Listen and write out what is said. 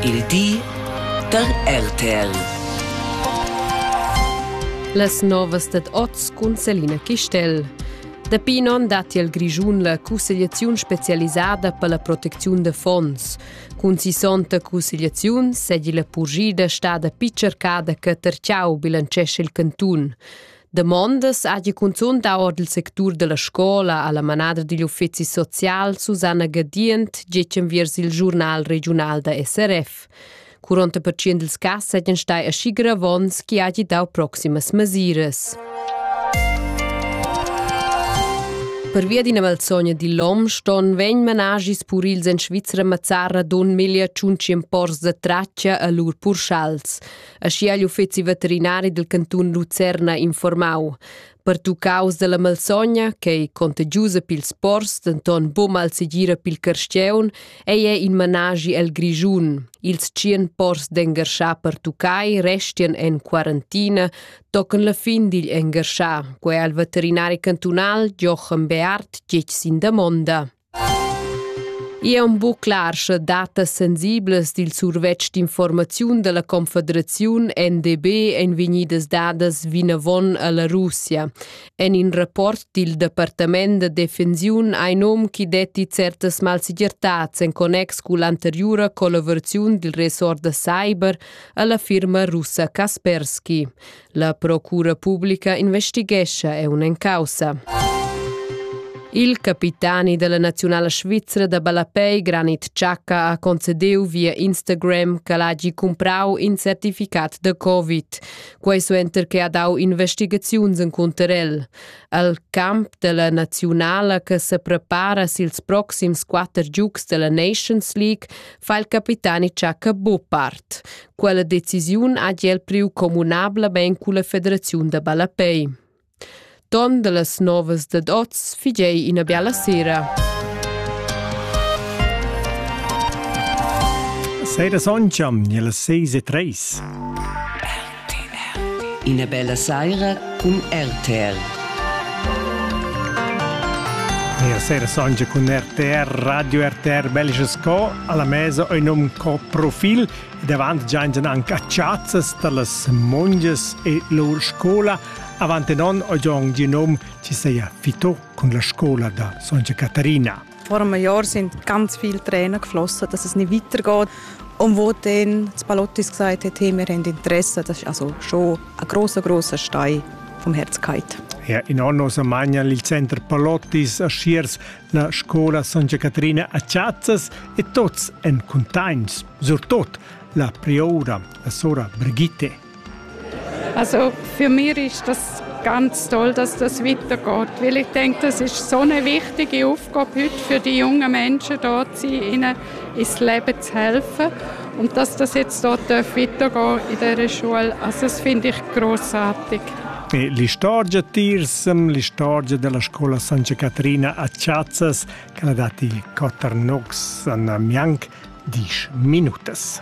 Il di da RTL. Las novas dad oz cun Selina Chistel. Dapi in onn datti al Grischun la cussegliaziun spezialisada per la protecziun da fonds. Cun sissonta cussegliaziun segi la purgida stada picercada che Terciau bilancesce il cantun. Damondas hagi cunzunt dau ord il sectur dalla scola alla manada digl uffeci social Susanna Gadient getg enviers il giurnal regiunal da SRF. Curont pertschient ils cass seigien stai aschi gravons chi hagi dau proximas mesiras. Pervia d'ina malsogna di l'om ston vegn managis purils en Svizzera mazzarra don meglio tschunci pors da traccia a lur purschals. aschia igl uffeci veterinari dil cantun Lucerna informau. Pertuccaus dalla malsogna, ch'ei contagiusa pils pors, denton buca malsegira pil carstgeun, ei è in managi el Grischun. Ils tschien pors d'engarschar pertuccai restien en quarantina, tocan la fin digl engarschar, quei al veterinari cantunal Jochen Beart gec sin damonda. I è buc clar, sche datas sensiblas dil survetsch d'informaziun dalla Confederaziun NDB ein vegnidas dadas vinavon alla Russia. En in rapport dil Departament da defensiun ein um chi detti certas malsegirtats en connex cull anteriura collaboraziun dil ressort da cyber alla firma russa Kaspersky. La procura publica investighescha è un caussa. Il capitani della nazionala svizzera da ballapei Granit Xhaka ha concedeu via Instagram che l'hagi comprau in certificat da Covid. Quei suenter che ha dau investigaziuns in conterel. Al camp della nazionala che se prepara sils proxims quatter giugs della Nations League fa il capitani Xhaka buo part. Quella decisiun ha el priu communablamein culla federaziun da ballapei. Ton dallas novas dad oz figei ina biala sera. Sera Soncham, nella 6 e 3. Ina bella saira cun RTR. E sera Soncha cun RTR, Radio RTR Belgische Sco, alla mesa un nome co profil. ed avant giaintan anche a chazzas da las mongias e lur scola. Avant en on ho già un nom ci seia fito cun la scola da Santa Caterina. Vor einem Jahr sind ganz viele Tränen geflossen, dass es nicht weitergeht. Und wo dann das Palottis gesagt hat, hey, wir haben Interesse, das ist also schon ein grosser, grosser Stein vom Herzkeit. Ja, in anno sa magnan il center Palottis a Schiers La scola San Caterina a Chazzas e tots en contagns, surtot la prioura, la sora Brigitte. Also für mich ist das ganz toll, dass das weitergeht, weil ich denke, das ist so eine wichtige Aufgabe heute für die jungen Menschen dort zu sein, ins Leben zu helfen und dass das jetzt dort weitergehen in dieser Schule, also das finde ich großartig. L'istorgia Tirsem, l'istorgia della scuola San Caterina a Chiazzas, che l'ha dati Koternox an Mianc, 10 minutas.